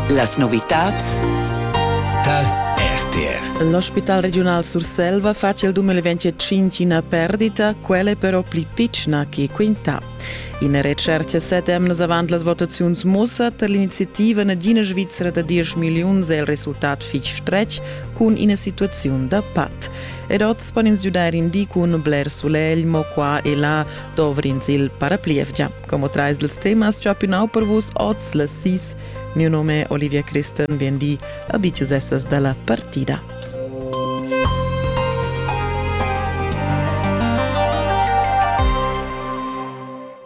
Las novitads tar RTR. L'ospital regiunal Surselva face il 2025 una perdita, quella però pli piccina che quinta. Ina recerca sette emnas avant las votaziuns mussa per l'iniziativa nagina Svizzera da 10 milliuns è il resultat fich stretg cun ina situaziun da pat. Ed oz pon ins giudair in di cun bler sulegl, mo qua e là dovrins il paraplievgia. Como trais dels temas già pinau per vus oz las sis. Mio nome è Olivia Christen, biendi, abicius essas dalla partida.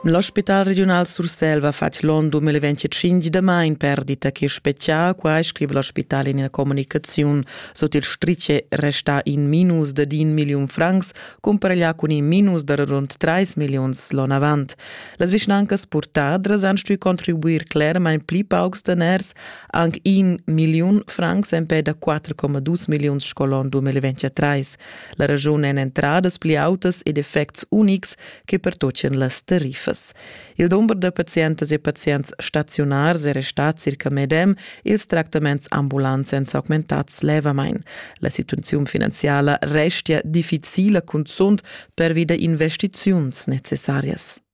L'ospital regional Sursel va fatg l'on 2025 da mai in perdita che specchia qua scrive l'ospital in una comunicazione sotto il strice resta in minus da din miliun francs cumpareglià cun in minus da rund 3 milliuns l'on avant. Las vischnancas purtadras han stuì contribuir clermain pli paucs daners, anc 1 milliun francs empè da 4,2 milliuns sco l'on 2023. La raschun èn entradas pli autas ed effects unics che pertocchian las tariffas. Il dumber da pazientas e pazients staziunars è restà circa medem, ils tractaments ambulants èn s'augmentads levamain. La situaziun finanziala restia difficila cunzunt pervi da investiziuns necessarias.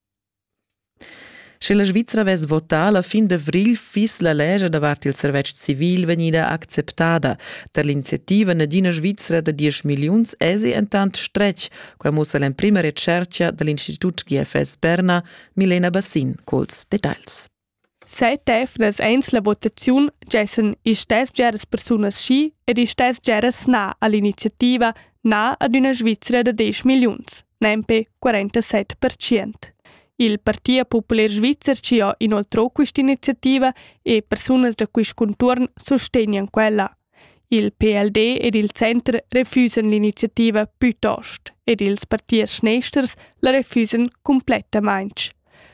Sche la Svizra avess votà la fin d'avrigl, fiss la lescha davart il servetsch civil vegnida acceptada. Tar l'iniziativa Nadina Svizra da 10 milliuns èsi entant stretg Quai mussa l'emprima retschertga da l'Institut GFS Berna, Milena Bassin, culs detagls. Set efnas eins la votaziun gessen istess bgeras persunas schi ed istess bgeras na all'iniziativa na ad üna Svizzera da 10 milliuns, nempe 47%. Il Partia Popular Svizzer ci ha inoltrò quest'iniziativa e persunas da quist contuorn sostegnan quella. Il PLD ed il center refusan l'iniziativa plitost ed ils partiers schnesters la refusan cumplettamain.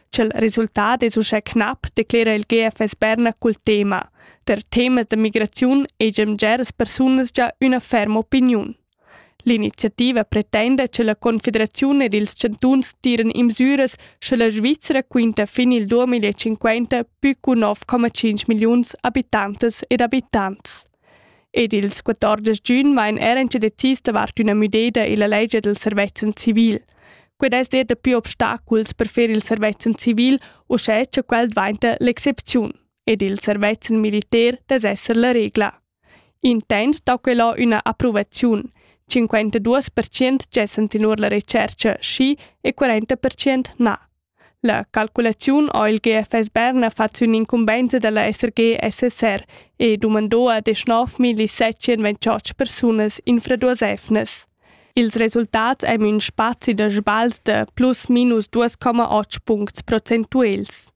Ch'el resultat es uschè knap, declera il GFS Berna cul tema. Der Temas der Migration egemger as persunas già üna ferma opiniun. L'iniziativa pretenda che la Confederaziun ed ils chantuns tiran imsüras scha la Svizra quinta fin il 2050 pü cu 9,5 milliuns abitantas ed abitants. Ed ils 14 giugn vain eran che decis davart üna müdeda illa legge del servezzan civil. Qued es der dapü obstaculs per fer il servezzan civil, uschè cha quel dvainta l'excepziun, ed il servezzan militar dess esser la regla. Intent dà quella üna approvaziun. Cinquantaduos percent gessan tenor la retschercha schi e quaranta percent na. La calculaziun ha il GFS Berna fat sün incumbenza da la SRG-SSR e dumandò ad 9.728 persunas infraduosefnas. Ils resultats ein ün spazi da sbagls da plus minus 2,8 puncts procentuels.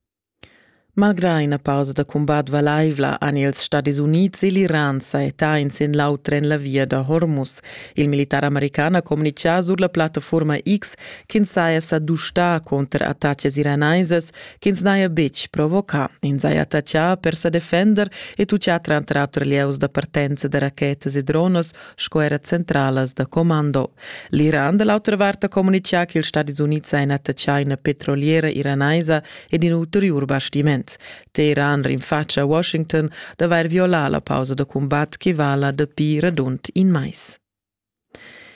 Malgrà ina pausa da cumbat valaivla han ils Stadis Unids e l'Iran sajettà in sin l'auter en la via da Hormuz. Il militar american ha communitgà sur la plattaforma X ch'ins saja sa dustà cunter attacas iranaisas ch'ins n'haja betg provocà. Ins haja attaccà per sa defender e tutgà tranter auter lieus da partenza da rachetas e dronas sco era centralas da commando. L'Iran da l'autra vart ha communitgà che ils Stadis Unids ha ina tschaina petroliera iranaisa ed in ulteriur bastiment. Teheran rinfatscha Washington d'avair violà la pausa da cumbat che vala dapi radund in mais.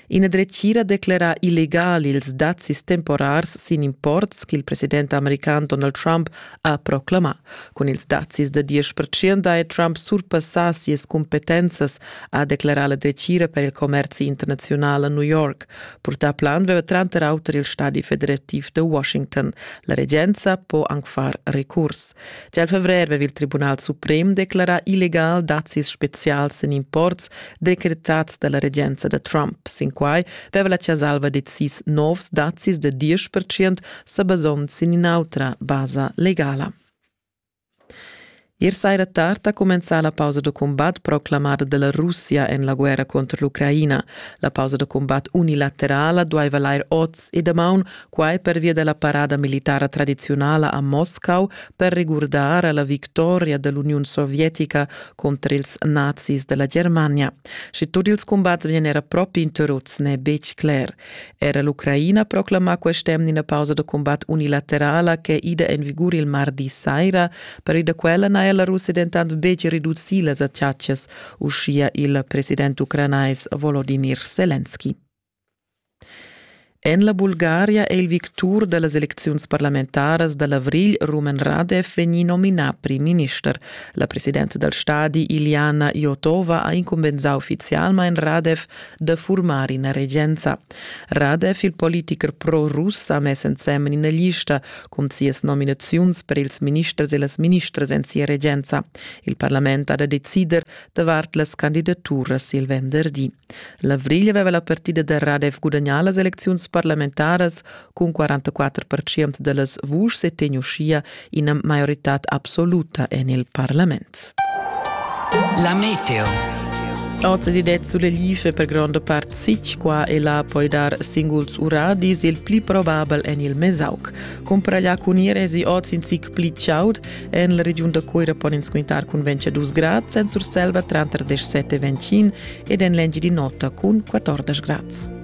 Ina dretgira declera illegal ils dazis temporars sin imports che il president american Donald Trump ha proclamà. Cun ils dazis da diesch percent è Trump surpassà sias cumpetenzas, ha declarà la dretgira per il commerzi internaziunal a New York. Purtà plan veva tranter auter il stadi federativ da Washington. La regenza po anc far recurs. Gia il fevrer veva il Tribunal suprem declarà illegal dazis spezials en imports decretads da la regenza da Trump. Sin quai veva la Chasalva decis novs dazis da 10% sebasond sin in'autra basa legala. Ier saira tard ha cumenzà la pausa da cumbat proclamada dalla Russia en la guerra contro l'Ucraina. La pausa da cumbat unilaterala dueva lair oz e damaun, quai pervia della parada militara tradizionala a Moscau per regurdar alla victoria dell'Uniun Sovietica contro ils nazis della Germania. Sche tut ils cumbats vien era propi interruts n'è betg cler. Era l'Ucraina proclama quest'emna ina pausa da cumbat unilaterala ch'è ida en vigur il mardi saira. Per da quella n'haja la Russia dentant betg reducì las attacas, uschia il president ucranais Volodimir Selenski. En la Bulgaria è il victur da las elecziuns parlamentaras da l'avrigl Rumen Radev vegnì nominà prim-minister. La presidenta dal stadi Iljana Jotova ha incumbensà uffizialmain Radev da furmar ina regenza. Radev, il politicher pro-russ, ha mess ensemen ina lista cun sias nominaziuns per ils ministers e las ministras en sia regenza. Il parlament ha da decider davart las candidaturas il venderdi. L'avrigl aveva la partida da Radev gudagnà las elecziuns parlamentaras Cun 44% da las vuschs è tegn uschia ina maioritad absoluta en il parlament. La meteo. Oz si det sulle life per grande part sic, qua e là puoi dar singuls uradis, il pli probabel en il Mesauc. Compra gli cunir esi oz in sic pli ciaud, en la regiun da Coira pon ins quintar cun 22 grad, sen Surselva 37 25 ed en l'engi di nota cun 14 grad.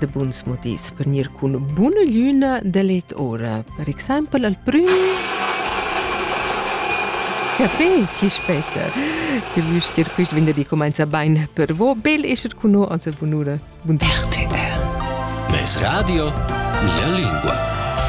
de buns modis per gnir cun buna glüna de let ora. Per exempel al prüm Café, ci spetta. Ci vüst dir quist venerdì comenza bain per vo. Bel esser con noi, also bunura. Bun RTR. Mes radio, mia lingua.